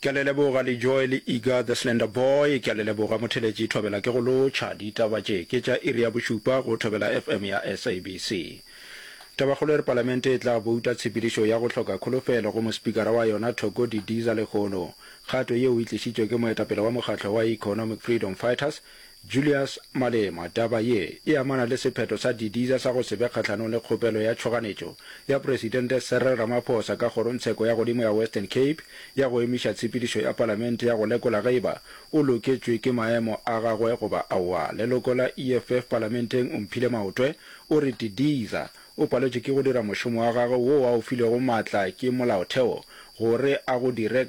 Ke a le leboga Lejoe le Iga the Slender Boy. Ke a le leboga Motheletši Thobela ke go lotšha. Ditaba tše ke tša iri ya bošupa go Thobela FM ya SABC. Tabakgolo e re Palamente e tla bouta tshepedišo ya go hloka kholofelo go mospikara wa yona Thoko Didiza Lekgolo. Kgato yeo e tlišitšwe ke moetapele wa mokgatlo wa Economic Freedom Fighters, Julius Malema, Taba ye e amana le sephetho sa Didiza sa go se be kgahlanong le kgopelo ya tšhoganetšo ya Presidente Cyril Ramaphosa ka Kgorongtsheko ya Godimo ya Western Cape ya go emiša tshepedišo ya Palamente ya go lekola ge e ba o loketšwe ke maemo a gagwe goba aowa. Leloko la EFF Palamenteng Omphile Maotwe o re Didiza o paletšwe ke go dira mošomo wa gagwe woo a o filwego maatla ke Molaotheo gore a go dire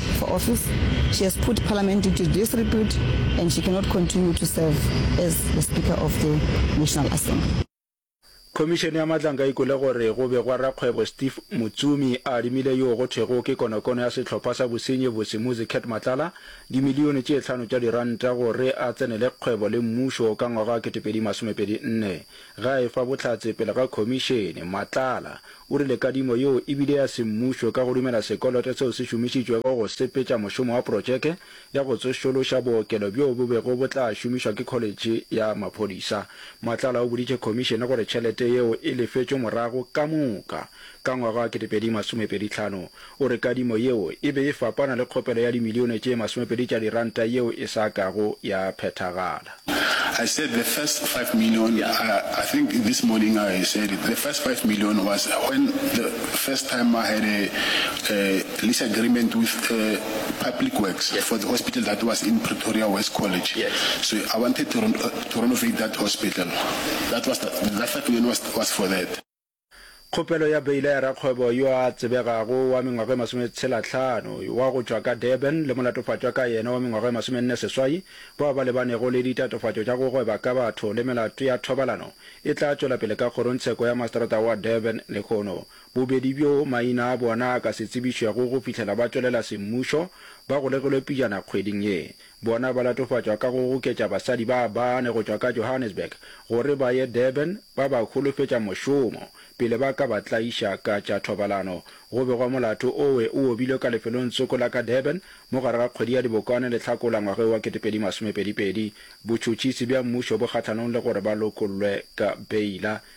for office, she has put Parliament into disrepute and she cannot continue to serve as the Speaker of the National Assembly. Khomišene ya Matlanka e kwele gore go begwa rakgwebo Steve Mutsomi a adimile yoo go thwego ke konokono ya sehlopha sa bosenyi bose Muzi Cat Matlala dimilione tše hlano tša diranta gore a tsenele kgwebo le mmušo ka ngwaga wa 2024. Ge a efa bohlatse pele ga khomišene, Matlala O rile kadimo yeo e bile ya semmušo ka go dumela sekoloto seo se šomišitšwego go sepetša mošomo wa protšeke ya go tsošološa bookelo bjoo bo bego bo tla šomišwa ke kholetšhe ya maphodisa. Matlala o boditše khomišene gore tšhelete yeo e lefetšwe morago ka moka ka ngwaga wa 2025. O re kadimo yeo e be e fapana le kgopelo ya dimilione tše masomepedi tša diranta yeo e sa kago ya phethagala. I said the first five million, I think this morning I said it, the first five million was when the first time I had a lease agreement with Public Works for the hospital that was in Pretoria West College. So I wanted to renovate that hospital. That was the, that five million was for that. Kgopelo ya beile ya rakgwebo yo a tsebegago wa mengwaga e masometshelatlhano wa go tšwa ka Durban le molatofatšwa ka yena wa mengwaga e masomenne seswai bao ba lebanego le ditatofatšo tša go gweba ka batho le melato ya thobalano e tla tšwela pele ka kgorongtsheko ya maseterata wa Durban lehono bobedi bjo maina a bona a ka se tsebišwego go fihlela ba tšwelela semmušo ba golegilwe pijana kgweding ye Bona ba latofatšwa ka go goketša basadi ba bane go tšwa ka Johannesburg gore ba ye Durban ba ba holofetša mošomo pele ba ka ba tlaiša ka tša thobalano. Go begwa molato owe o obilwe ka lefelongtsoko la ka Durban mo gare ga kgwedi ya Dibokwane le Hlakola ngwageo wa 2022. Botšhotšhisi bja mmušo bo kgahlanong le gore ba lokollwe ka beila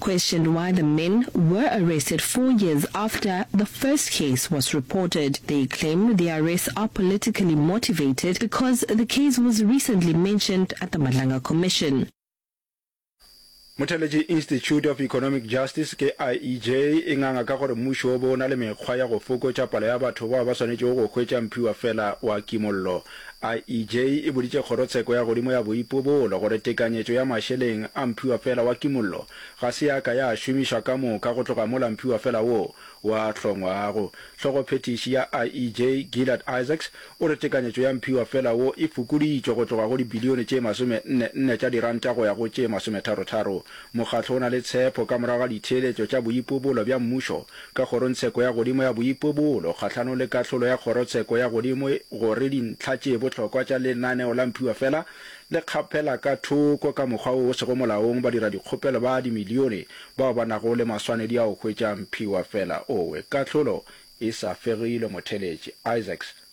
Questioned why the men were arrested four years after the first case was reported, they claim the arrests are politically motivated because the case was recently mentioned at the Madlanga Commission. Mothelegi Institute of Economic Justice ke IEJ e nganga ka gore mmušo o be o na le mekgwa ya go fokotša palo ya batho bao ba swanetšego go hwetša mphiwa fela wa kimollo. IEJ e boditše Kgorotsheko ya godimo ya Boipobolo gore tekanyetšo ya mašeleng a mphiwafela wa kimollo ga se ya ka ya šomišwa ka moka go tloga mola mphiwafela woo wa hlongwago. Hlogophethiši ya IEJ, Gillard Isaacs, o re tekanyetšo ya mphiwafela wo e fokoditšwe go tloga go dibilione tše masome-nne nne tša diranta go ya go tše masometharo-tharo. Mokgatlo o na le tshepo ka morago ga ditheeletšo tša boipobolo bja mmušo ka Kgorongtsheko ya Godimo ya Boipobolo kgahlanong le kahlolo ya Kgorotsheko ya Godimo gore dintlha tše bohlokwa tša lenaneo la Mphiwa Fela le kgaphela ka thoko ka mokgwa wo o sego molaong badiradikgopelo ba dimilione bao ba nago le maswanedi a go hwetša Mphiwa Fela Owe. Kahlolo e sa fegilwe Motheletši Isaacs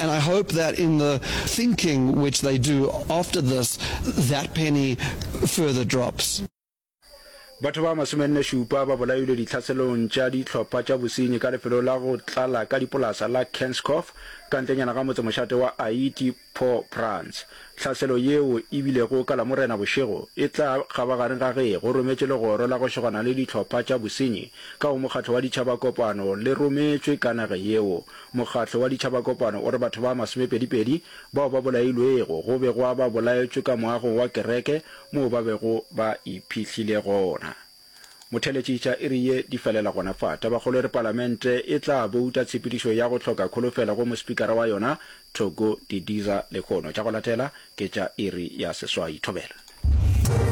And I hope that in the thinking which they do after this, that penny further drops. Batho ba masomenne-šupa ba bolailwe ditlhaselong tša dihlopha tša bosenyi ka lefelo la go tlala ka dipolasa la Kenskhof ka ntlenyana ga motsemošate wa Ayiti, Port-au-Prince. Tlhaselo yeo e bilego ka Lamorena bošego e tla kgabagareng ga ge go rometše legoro la go šegwana le dihlopha tša bosenyi ka go Mokgatlo wa Ditšhaba kopano le rometšwe ka nage yeo Mokgatlo wa Ditšhabakopano o re batho ba masomepedipedi bao ba bolailwego go be gwa ba bolaetšwe ka moagong wa kereke moo ba bego ba iphihlile gona. Motheletši tša iri ye di felela gona fa. Tabakgolo e re Palamente e tla bouta tshepedišo ya go hloka kholofelo go mospikara wa yona Thoko Didiza lehono. Tša go latela ke tša iri ya seswai. Thobela.